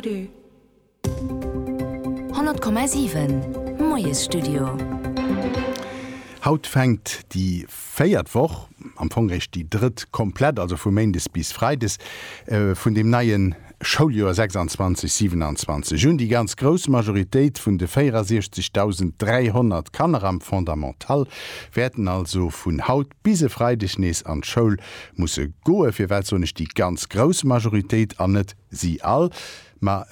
100,7 Moiesstudio. Haut fänkt déi véiert Woch, am Fong réischt déi drëtt komplett, also vu méindes bis freides, vun dem neie Schouljoer 26, 27 un. Déi ganz grouss Majoritéit vun de 64.300 Kanner am Fondamental wäerten also vun haut bis e Freideg nees an d'Schoul musse goe fir, wat soen ech, déi ganz grouss Majoritéit, an net si all, mä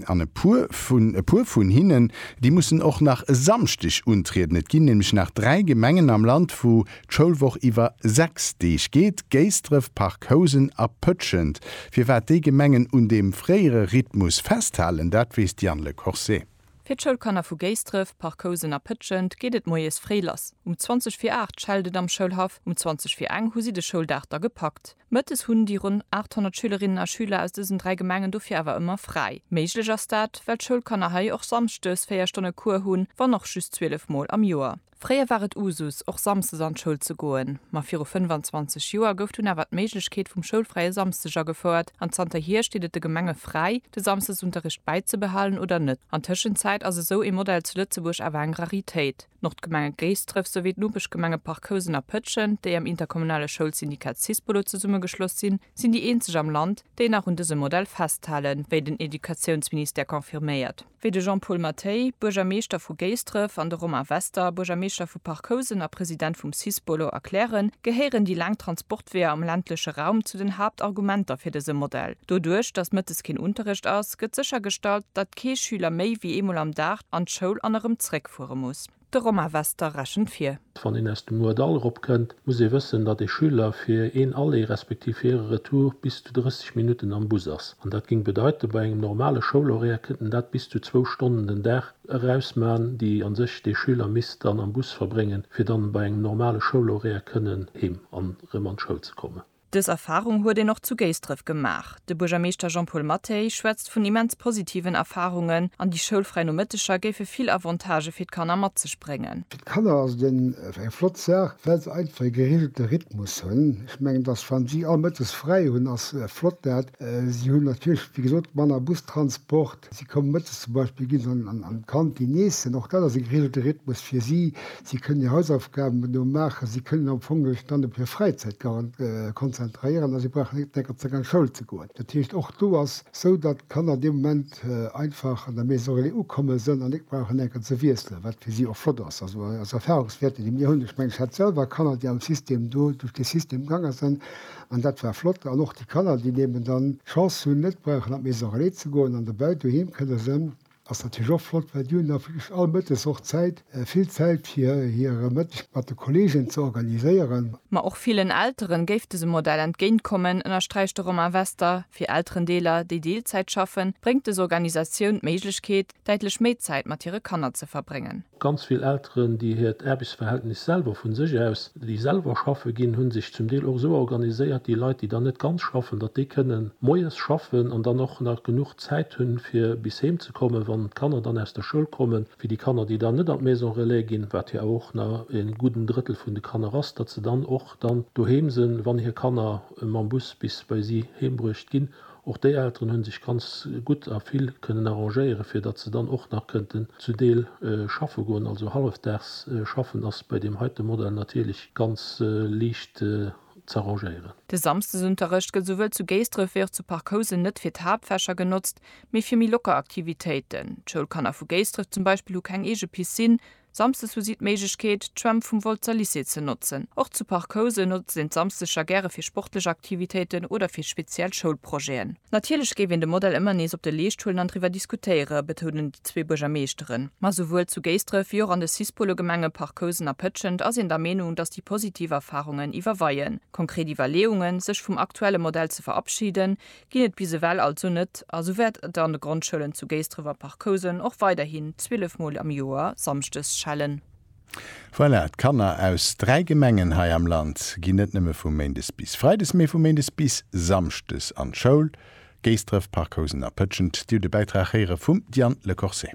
an e puer vun, e puer vun hinnen, déi mussen och nach e Samschdeg untrieden. Et ginn nämlech nach dräi Gemengen am Land, wou d'Schoulwoch iwwer sechs Deeg geet, Géisdref, Parc Housen a Pëtschent. Firwat déi Gemengen un deem fréiere Rhythmus festhalen, dat weess d'Yann Le Corset. Fir d'Schoulkanner vu Géisdref, Parc-Housen a Pëtschent geet et moies fréi lass. Um 20 vir 8 schellt et am Schoulhaff, um 20 vir eng hu si de Schouldag da gepackt. Mëttes hunn déi ronn 800 Schülerinnen a Schüler aus dësen dräi Gemengen dofir awer ëmmer fräi. Méiglech ass dat, well d'Schoulkanner hei och samschdes 4 Stonne Cours hunn, wann och just 12 Mol am Joer. Fréier war et Usus, och samsdes an d'Schoul ze goen, ma viru 25 Joer gouf dunn awer d'Méiglechkeet vum schoulfräie Samsdeg agefouert an zanter hier steet et de Gemenge fräi, de Samsdesunterricht bäizebehalen oder net. An Tëschenzäit ass esou ee Modell zu Lëtzebuerg awer eng Raritéit. D'Nordgemenge Géisdref souwéi d'Nopeschgemenge Parc Housen a Pëtschent, déi am interkommunale Schoulsyndikat Syspolo zesummegeschloss sinn, sinn déi eenzeg am Land, déi nach un dësem Modell festhalen, wéi den Educatiounsministère confirméiert. wéi de Jean-Paul Mathey, Buergermeeschter vu Géisdref, an de Romain Wester, Buergermeeschter vu Parc Housen a President vum Cis-Bolo, erklären, gehéieren déi laang Transportweeër am ländleche Raum zu den Haaptargumenter fir dëse Modell. Doduerch, datt mëttes keen Unterrecht ass, gëtt séchergestallt, datt kee Schüler méi wéi eemol am Dag an d'Schoul an erëm zréckfuere muss. De Romain Wester rechent vir. Wann een aus dem Moerdall eropkënnt, muss ee wëssen, datt ee Schüler fir een Aller respektiv fir e Retour bis zu 30 Minutten am Bus ass. An dat géing bedeiten, bei engem normale Schoulhoraire kënnt en dat bis zu zwou Stonnen den Dag erausman, déi a sech dee Schüler misst dann am Bus verbréngen, fir dann bei engem normale Schoulhoraire kënnen heem an erëm an d'Schoul ze kommen. Dës Erfarung huet een och zu Géisdref gemaach. De Buergermeeschter Jean-Paul Mathey schwätzt vun immens positiven Erfarungen an déi schoulfräi Nomëtteger géife vill Avantagë fir d'Kanner mat sech bréngen. Fir d'Kanner ass et eng flott Saach, well se einfach e gereegelte Rhythmus hunn. Ech mengen, dass wann si all mëttes fräi hunn, ass flott dat. Si hunn natierlech, wéi gesot, manner Bustransport. Si kommen mëttes zum Beispill, gi se an d'Kantin iessen, och dat ass e geregelte Rhythmus fir si. Si kënnen hir Hausaufgaben do maachen, si kënnen am Fong sech dann op hir Fräizäit konzentréieren a si brauchen net d'ganzer Zäit an d'Schoul ze goen. Dat heescht, och do ass esou, datt d'Kanner dee Moment einfach an der Maison relais ukomme sinn an net brauchen enker ze wiesselen, wat fir si och flott ass. Also aus Erfahrungswäerten, déi mir hunn, ech mengen, ech hat selwer Kanner, déi am System do duerch dee System gaange sinn, An dat war flott. An och déi Kanner, déi eben dann d'Chance hunn, net brauchen an d'Maison Relais ze goen an dobäi doheem kënne sënn, ass natierlech och flott, well déi hunn da wierklech all Mëttes och Zäit, vill Zäit, fir hire Mëtteg mat de Kolleegen ze organiséieren. Ma och villen Eltere géif dëse Modell entgéint kommen, ënnersträicht de Romain Wester. Fir Elterendeeler, déi Deelzäit schaffen, bréngt des Organisatioun d'Méiglechkeet, däitlech méi Zäit mat hire Kanner ze verbréngen. Ganz vill Elteren, déi hiert Aarbechtsverhältnis selwer vu sech aus, déi selwer schaffe ginn, hu sech zum Deel och esou organiséiert, déi Leit, déi dann net ganz schaffen, datt déi kënne moies schaffen an dann och nach genuch Zäit hunn, fir bis heem ze kommen, wann d'Kanner dann aus der Schoul kommen, fir déi Kanner, déi dann net an d'Maison relais ginn, wat jo awer och nach e gudden Drëttel vun de Kanner ass, datt se dann och dann doheem sinn, wann hir Kanner mam Bus bis bei si heembruecht ginn. Och déi Elteren hunn sech ganz gutt a vill kënnen arrangéieren, fir datt se dann och nach kënnten zu Deel schaffe goen. Also hallefdaags schaffen ass bei deem heite Modell natierlech ganz liicht z'arrangéieren. De Samsdesunterrecht gëtt souwuel zu Géisdref wéi och zu Parc Housen net fir d'Haaptfächer genotzt, mee fir méi locker Aktivitéiten. D'Schoulkanner vu Géisdref zum Beispill hu keng eege Piscine, Samsdes hu si d'Méiglechkeet, d'Schwämm vum Wolzer Lycée ze notzen. Och zu Parc Housen notzt een d'Samsdeger gäre fir sportlech Aktivitéiten oder fir speziell Schoulprojeten. Natierlech géif een de Modell ëmmer nees op de Leescht huelen an driwwer diskutéiere betounen déi zwee Buergermeeschteren. Ma souwuel zu Géisdref wéi och an de Cis-Polo-Gemenge Parc Housen a Pëtschent ass een der Meenung, datt déi positiv Erfarungen iwwerweien. Konkret Iwwerleeungen, sech vum aktuelle Modell ze verabschiden, ginn et bis ewell also net a sou wäert et an de Grondschoulen zu Géisdref a Parc-Housen och weiderhin 12 Mol am Joer samschdes schellen. Voilà, d'Kanner aus 3 Gemengen hei am Land ginn net nëmme vu méindes bis freides, mee vu méindes bis samschdes an d'Schoul, Géisdref, Parc-Housen a Pëtschent. Dir hutt e Bäitrag héiere vum Diane Le Corset.